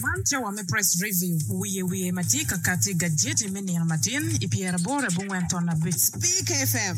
Man cawa me Press Review wiye wiye ma tye ka kati gajeti me nino matin i pyeraboro abongwen ton abic Speak FM.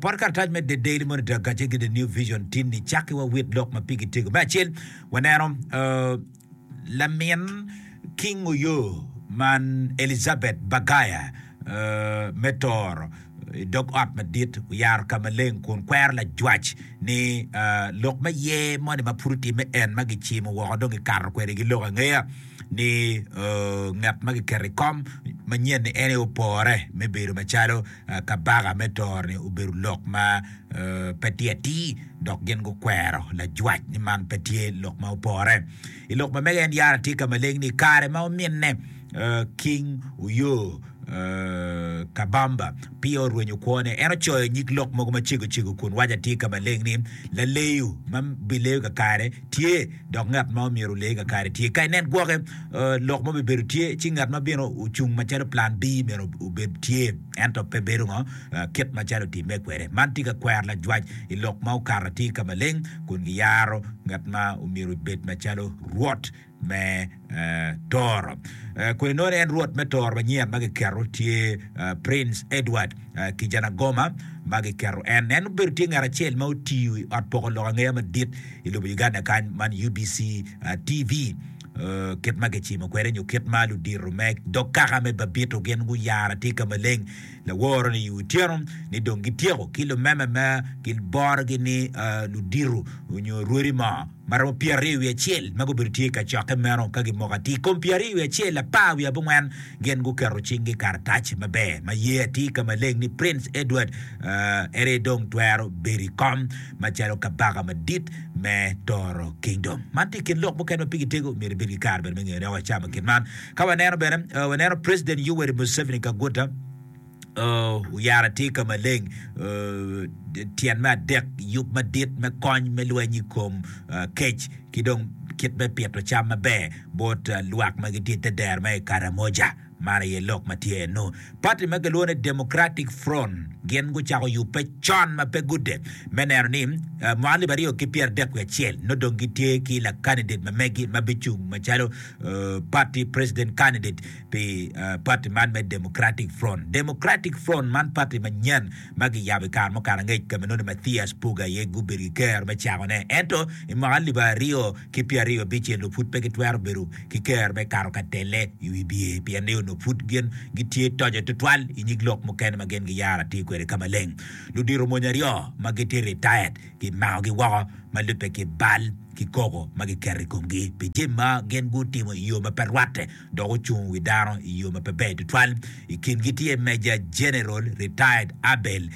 Pot karatac me The Daily Monitor kacel ki The New Vision tinni cakki wa wit lok ma pigi tego. Me acel, waneno lamin King Oyo man Elizabeth Bagaya me toro i dog ot madit oyaro ka maleng kun kwero lajwac ni lok me ye moni ma pud otimme en ma gicimo woko dong gikato kwede ki lok angeya ni ngat ma giketo i kom manyen ni en aye opore me bedo macalo Kabaka me Toro-ni obedo lok ma pe tye atir, dok gin gukwero lajwac ni man pe tye lok ma opore. I lok ma mege, en yara tye ka maleng ni i kare ma ominne King Uyo Kabamba peya orwenyo kwone, en ocoyo nyig lok mogo macego cego kun waco atir ka maleng ni, Laleyo ma bileyo kakare, Tye, dok ngat ma myero olee kakare tye. Ka inen gwoke, lok mo bibedo tye, ci ngat ma bino ocung macalo plan B myero obed tye, ento pe bedo ngo, kit macalo otimme kwede. Man tye ka kwero lajwac i lok ma okato atir ka maleng, kun giyaro ngat ma myero obed macalo rwot me. Toro. Kodi nongo en Rwot me Toro manyen ma giketo tye Prince Edward Kijanagoma ma giketo en. En obedo tye ngat acel ma otiyo i ot poko lok angeya madit i lobo Uganda kany man UBC TV. Kit ma kicimo kwede nyo kit ma ludito me dog kaka me Babito gin guyaro atika maleng laworo ni i otyeno ni dong gityeko ki lumeme ma giborogi ni ludito nyo rwodi mo ma romo pyeraryo wiye acel ma gubedo tye i kacokke meno ka gimoko atir. I kom pyeraryo wiye acel, apar wiye abongwen gin guketo cinggi i karatac maber ma ye atir ka maleng ni Prince Edward ii aye dong twero bedo i kom macalo Kabaka Madit me Toro Kingdom. Man tye i kin lok mukene ma pigi tego, myero ibed ki kare bene me ngeyo dok wacamo kit man ka waneno bene, waneno President Yoweri Museveni Kaguta, Oyara tye ka maleng, tyen me adek, yub madit me kony me lweny i kom kec ki dong kit me pito cam maber bot lwak ma gitye i te dero ma i Karamoja. Man aye lok ma tye eno. Pati ma kilwongo ni Democratic Front gin gucako yubbe con ma pe gudek me neno ni mwaka alip aryo ki pyera adek wiye acel nongo dong gitye ki lakandidet ma megi ma bicung macalo pati president candidate pi pati man me Democratic Front. Democratic Front man pati manyen ma giyabo i kare mukato angec ka ma nongo Mathias Puga aye gubedo ki ker me cakone. Ento i mwaka alip aryo ki pyeraryo abicce nongo pud pe gitwero bedo ki ker me kato ka telle i wi bye pien ni onongo pud gin gitye toco tutwal i nyig lok mukene ma gin giyaro atir kwede ka maleng. Ludito mony aryo ma gitye retired gimakogi woko ma lubbe ki bal ki koko ma giketo i komgi pi jami ma gin gutimo i yo ma pe rwatte. dok ocung wi dano i yo ma pe ber tutwal. I kingi tye Meja Jeneral, Retired, Abel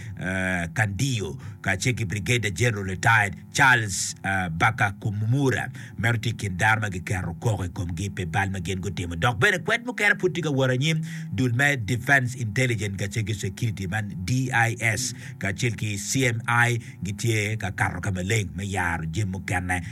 Candio kacel ki Brigadier Jeneral, Retired, Charles Bakakumumura. Meno tye i kin dano ma giketo koko i komgi pi bal ma gin gutimo. Dok bene kwed mukene pud tye ka wot anyim. Dul me Defence Intelligence kacel ki Security man DIS kacel ki CMI gitye ka kato ka maleng me yaro jami mukene.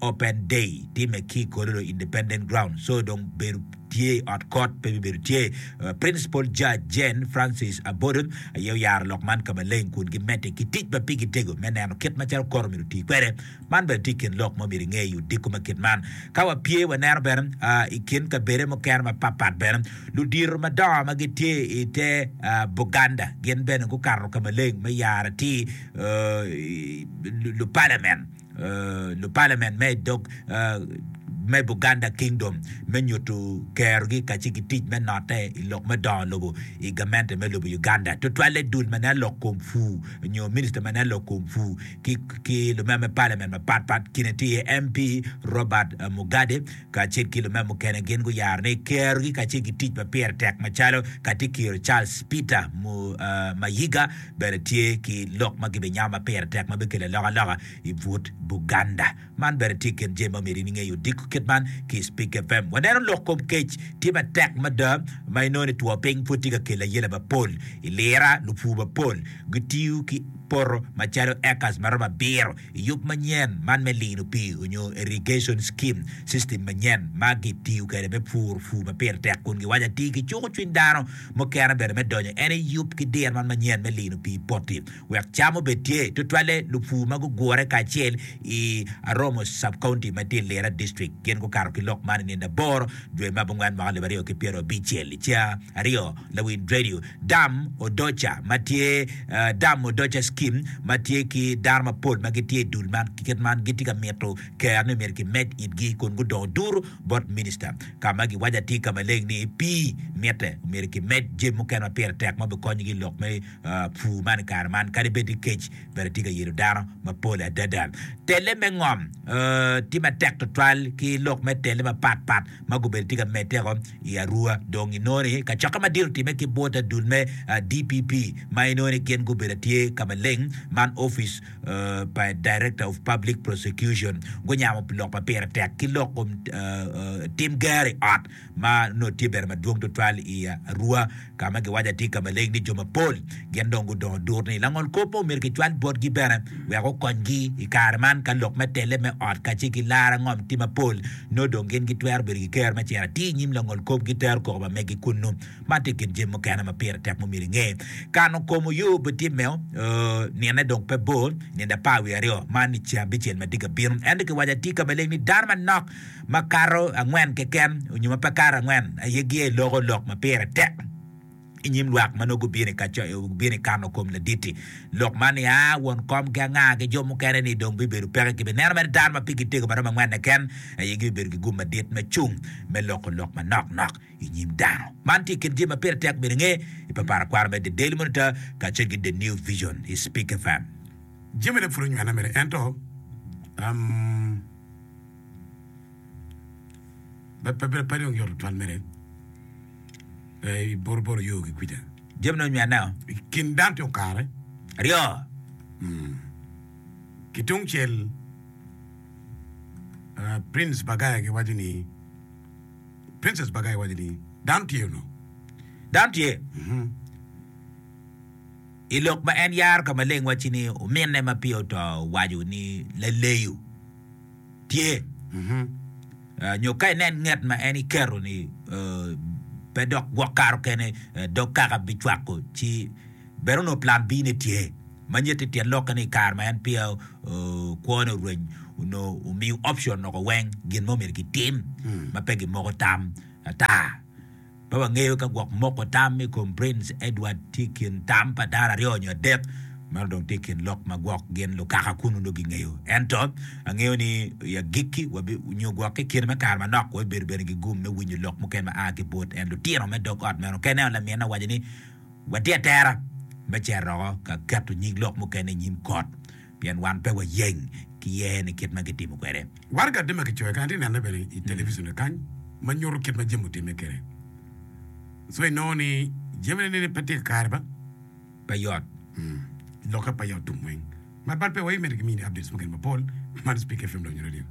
Open day time ki Kololo Independent Ground so dong bedo tye i ot kot pe bibedo tye. Principal Judge Jane Francis Abodo aye oyaro lok man ka maleng kun gimedde ki tic ma pigi tego me neno kit macalo kot omyero oti kwede. Man bene tye i kin lok ma omyero inge i odiko ma kit man. Ka wapye waneno bene i kin kabede mukene mapatpat bene ludito madongo ma gitye i te Buganda gin bene gukato ka maleng me yaro atir lupalamen. lupalamen me i dog me Buganda Kingdom me nyutu kerogi kaci ki tic me note i lok me dongo lobo i gamente me lobo Uganda tutwalle dul ma nen lok kom pu nyo minista ma nen lok kom pu ki ki lumeme palamen mapat pat kine tye iye MP Robert Mugade kacel ki lume mukene gin guyaro ni kerogi kacel ki tic ma pire tek macalo Katikiro Charles Peter Mayiga bene tye ki lok ma gibinyamo ma pire tek ma bikelo alokaloka i but Buganda. Man bene tye i kin jami ma omyero in inge i odiko kit man ki i Speak FM. Waneno lok kom kec tye matek mada ma inongo ni two piny pwod tye ka kelo ayela mapol i Lira. Lupur mapol gitiyo ki poto macalo acres maromo abiro Yub manyen man me lino pii onyo irrigation scheme, system manyen ma gi tiyo kwede me pur pur ma pire tek kun gi waco atir ki cuko cwiny dano mukene bene me donyo en aye yub ki diro man manyen me lino pii poti wek cam obed tye tutwalle lupur ma gugure kacel i Aromo Sub-County ma tye i Lira District gin gukato ki lok man i nino aboro dwe me abongwen mwaka alip aryo ki pyero abicel ca aryo. lawil redio Dam Odoca ma tye Dam Odoca Skim ma tye ki dano mapol ma gitye i dul man ki kit man gitye ka mito ker ni myero kimed itgi kun gudongo duru bot minista ka ma giwaco atir ka maleng ni pii mitte myero kimed jami mukene ma pire tek ma obikonyogi lok me pur man i kare man kadi bed ni kec bene tye ka yelo dano mapol adada. Tele me ngom tye matek tutwal ki lok me tele mapatpat. ma gubedo tye ka meddeko i Arua dong inongo ni kacokke madit otimme ki bot adul me DPP ma inongo ni gin gubedo tye ka maleng man ofice pa Director of Public Prosecution gunyamo lok ma pire tek ki lok kom tim gero i ot ma nongo tye bene madwong tutwal i Arua ka ma giwaco atir ka maleng ni jo mapol gin dong gudongo dur ni langol kop mo myero kicwal botgi bene wek okonygi i kare man ka lok me telle me ot kacel ki lar angom tye mapol nongo dong gin gitwero bedo ki ker me cito atir i nyim langol kop ki tero koko pa megi kunnu man tye i kin jami mukene ma pire tek ma omyero inge kano kom oyo pe tye me o nine dong pe bor nino apar wiye aryo man ni ceng abicel ma tye ka bino ento kiwaco atir ka maleng ni dano manok ma kato angwen keken nyo ma pe kato angwen aye giya i loko lok ma pire tek i nyim lwak ma nongo gubino i kano kom ladit-ti. Lok man nia won kom ki anga ki jo mukene ni dong bibedo peke ki bineno mere dano ma pigi tego ma romo angwen keken aye gibibedo ki gum madit me cung me loko lok manok nok i nyim dano. Man tye i kin jami ma pire tek bedo nge i paparakwaro me The Daily Monitor kacel ki The New Vision i Spik FM. Jami-ni pud onywena mere ento. Pe dong yot tutwal mere i boroboro yo ki kwija. Jamine onyo aneo. I kin dano tye okare. Aryo. Ki tung cel, Prince Bagaya gi waco ni, Princess Bagaya waco ni, dano tye ono. Dano tye. I lok ma en yaro ka maleng wacci ni ominne ma peya oto owaco ni laleyo tye nyo ka inen nget ma en iketo ni pe dok gwok karo kene dog kaka bicwako ci bene onongo plan B ne tye ma nyeti tyen lokke ni ikare ma en peya kwo ne orweny onongo omiyo option loko weng gin ma omyero gitim ma pe gimoko tam ata. Pe wangeyo ka gwok moko tam i kom Prince Edward tye i kin tam pa dano aryo nyo adek, meno dong tye i kin lok ma gwok gin lukaka kunnu nongo gingeyo. Ento, angeyo ni i agikki, nyo gwok ki i kine me kare manok, wabibedo bene ki gum me winyo lok muken ma a ki bot en. Lutino me dog ot meno kene onongo laminna owaco ni, Watye atera me cito oko ka keto nyig lok mukene i nyim kot. Pien wan pe wayeng ki yer ni kit ma gitimo kwede. War kadi ma kicoyo kany, atye nene bene i television kany ma nyuto kit ma jami otimme kede. So inongo ni jami ne ni pe tye kakare ba? Pe yot. Lokke pe yot tum weng. Mar bal pe wai miti ki mini updates mukene mapol man i Speak FM dok nyo radio.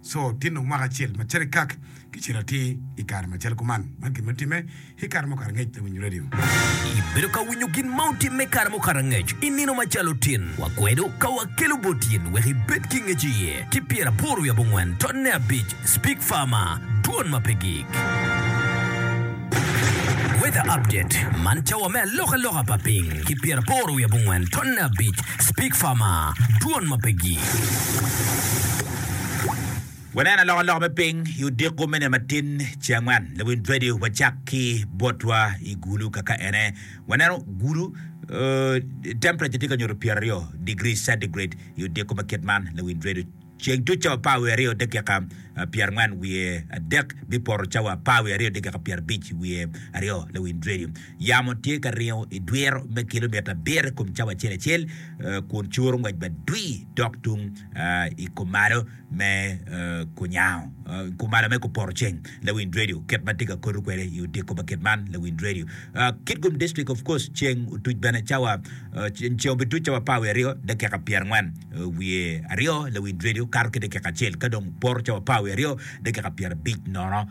Co tinne omako acel ma cito i kak ki cel atir i kare macalo kuman. Man gin ma timme ki kare mukato angec me winyo redio. Ibedo ka winyo gin ma otimme kare mukato angec i nino macalo tin wa kwedo ka wakelo bot in wek ibed ki ngec iye ki pyer aboro wi abongwen tot ne abic Speak Farmer, Dwon ma pe gik. Weather Update, Man cawa me alokaloka pa piny ki pyer aboro wi abongwen tot ne abic Speak Farmer, Dwon ma pe gik. Wanen alokaloka me piny i odiko me nino matin ce angwen. Lawiny Radio wacak ki botwa i gulu kaka ene. Waneno gulu uh, temperature tye ka nyuto pyera ryo degree centigrade i odiko ma kit man Lawiny Radio. Ceng tuc cawa apar wiye aryo dakika uh, pyera angwen wiye adek bipoto cawa apar wiye aryo dakika pyera abic wiye aryo Lawiny Radio. Yamo tye ka ringo i dwiro me kilomita abiro i kom cawa acel acel kun curo ngwec madwir dok tung i kumalo me kunyango, kumalo me kuporoceng. Lawind redio, kit ma atye ka koto kwede i odiko pa kit man, lawind redio, Kitgum District of course ceng otuc bene cawa, ceng obituc cawa apar wiye aryo dakika pyerangwen wiye aryo, lawind redio kato ki dakika acel ka dong poto cawa apar wiye aryo dakika pyerabic nono.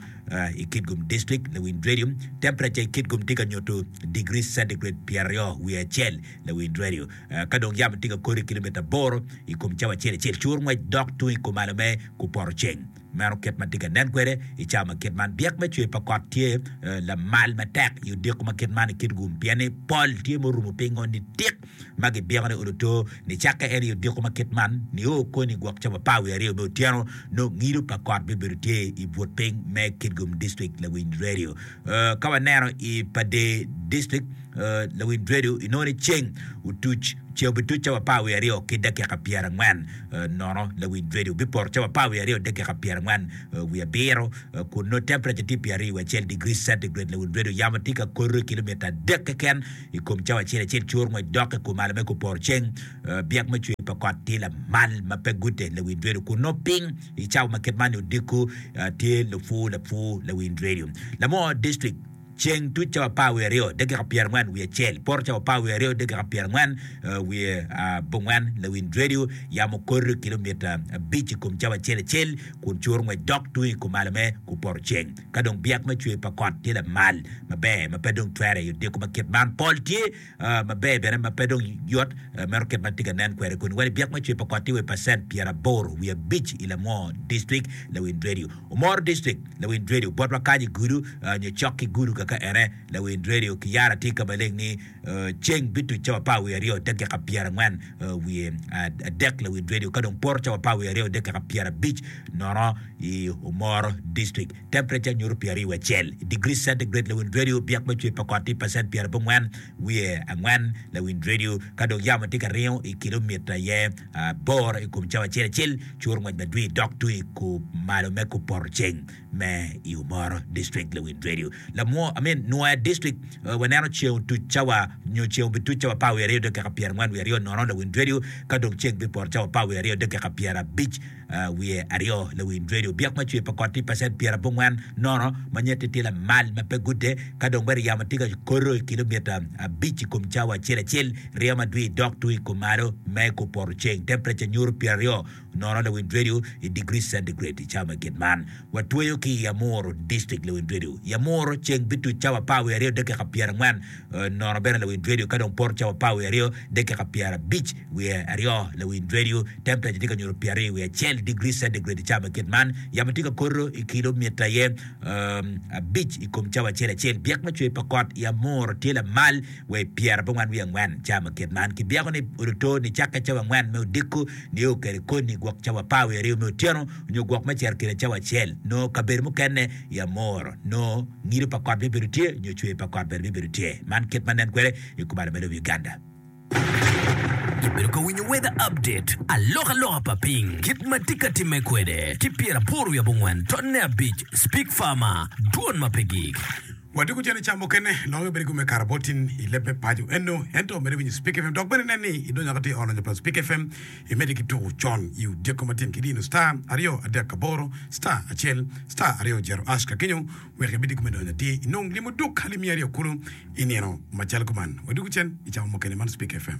i kit kom dictrik, lawindradio, temperature i kit kom tye ka nyuto digri centigrade pyeraryo wiye acel, lawindradio, ka dong yamo tye ka kore kilometer aboro i kom cawa acel acel, cur ngwec dok tung i kumalo me ku poto ceng. Meno kit ma tye ka nen kwede i cawa ma kit man. Byek me cwer pa kot tye lamal matek i odiko ma kit man i kit kom pien ni pol tye murumo pingo nitik. ma gibyeko ni Oluto, nicakke en i odiko ma kit man nio kony i gwok camo apar wiye aryo me otyeno, nongo ngido pa kot bibedo tye i but piny me Kitgum District Lawiny Radio. Ka waneno i Pader District Lawiny Radio inongo ni ceng otuc ce obituc camo apar wiye aryo ki dakika pyera angwen nono, Lawiny Radio bipoto camo apar wiye aryo dakika pyera angwen wiye abiro kun nongo temperature tye pyera aryo wiye acel degree centigrade, Lawiny Radio yamo tye ka kore kilomita adek keken. I kom cawa acel acel, cur ngwec dok i ku malo me kuporo ceng. Byek me cwer pa kot tye lamal ma pe gute lawiny dredo kun nongo piny i cawa ma kit man-ni odiko tye lupwu lapwu lawiny dredo. Lamo District, Ceng tuc cawa apar wiye aryo dakika pyera ngwen wiye acel, poto cawa apar wiye aryo dakika pyera ngwen wiye abongwen lawiny dredo. Yamo kore kilomita abic i kom cawa acel acel kun cur ngwec dok tung i ku malo me kuporo ceng. Ka dong byek me cwer pa kot tye lamal maber ma pe dong cwere i odiko ma kit man, pol tye maber bene ma pe dong yot meno kit ma tye ka nen kwede kuni. Wene byek me cwer pa kot tye wa i pacent pyeraboro wiye abic i lamwo distrik Lawiny Radio. Omoro Distrik, Lawiny Radio, botwa kany i gudu nyo cok ki gudu kaka ene, Lawiny Radio, ki yara tye ka maleng ni Ceng bituc cawa apar wiye aryo dakika pyerangwen wiye adek lawil radio ka dong poto cawa apar wiye aryo dakika pyerabic nono i Omoro District. Temperature nyuto pyer aryo wiye acel i degree centigrade lawil radio byek me cwer pa kot tye pacent pyerabongwen wiye angwen lawil radio ka dong yamo tye ka ringo i kilomita aye aboro i kom cawa acel acel curo ngwec madwir dok twi kumalo me kupoto ceng me i Omoro District Lewid Radio lamwo I mean Nwoya District waneno ceng otuc cawa nyo ceng obituc cawa apar wiye aryo dakika pyerangwen wiye aryo nono Lewid Radio ka dong ceng bipoto cawa apar wiye aryo dakika pyerabic wiye aryo Lewid Radio byek ma cwer pa kot tye pacent pyerabongwen nono ma nyette tye lamal ma pe gudde ka dong bene yamo tye ka koto i kilomita abic i kom cawa acel acel ryo madwir dok tung i kom malo me kor poto ceng temperature nyuto pyeraryo Nono Lewin Radio i Degree Centigrade i cawa me gin man. Watweyo ki i Amuru, Dictrict, Lewin Radio i Amuru, ceng bituc cawa apar wiye aryo dakika pyerangwen. Nono bene Lewin Radio ka dong poto cawa apar wiye aryo dakika pyerabic wiye aryo. Lewin Radio, Temperature tye ka nyuto pyeraryo wiye acel Degree Centigrade i cawa me gin man. Yamo tye ka koto i kilo mita aye abic i kom cawa acel acel. Byek me cwer pa kot i Amuru tye lamal wa i pyerabongwen wiye angwen cawa me gin man. Kibyeko ni odoto ni cakke cawa angwen me odiko. Nio kede koni gwok cawa apar wiye aryo me otyeno, nyo gwok me ciro kine cawa acel. Noo kabedo mukene i amor, noo ngido pa kot bibedo tye nyo cwer pa kot bene bibedo tye. Man kit ma nen kwede i kubalo me lobo Uganda. Ibedo ka winyo weather update, alokaloka pa piny, kit ma tye ka timme kwede ki pyeraboro wiye abongwen totne abic, Speak Farmer, dwon ma pe gik. Wadiko cene ca mukene longe bedo kome kara bot tin i leb me paco eno ento mede winyo Spik FM dok bene nen ni i donyo ka tye olo nyo plat Spik FM i mede ki tuku con i odyeko matin ki dino star aryo adek aboro star acel star aryo jero ash ka kenyo wek i bidi kome donyo atir i nong limo duk alimi aryo kulu i nino macalo kuman wadiko cen i camo mukene man Spik FM.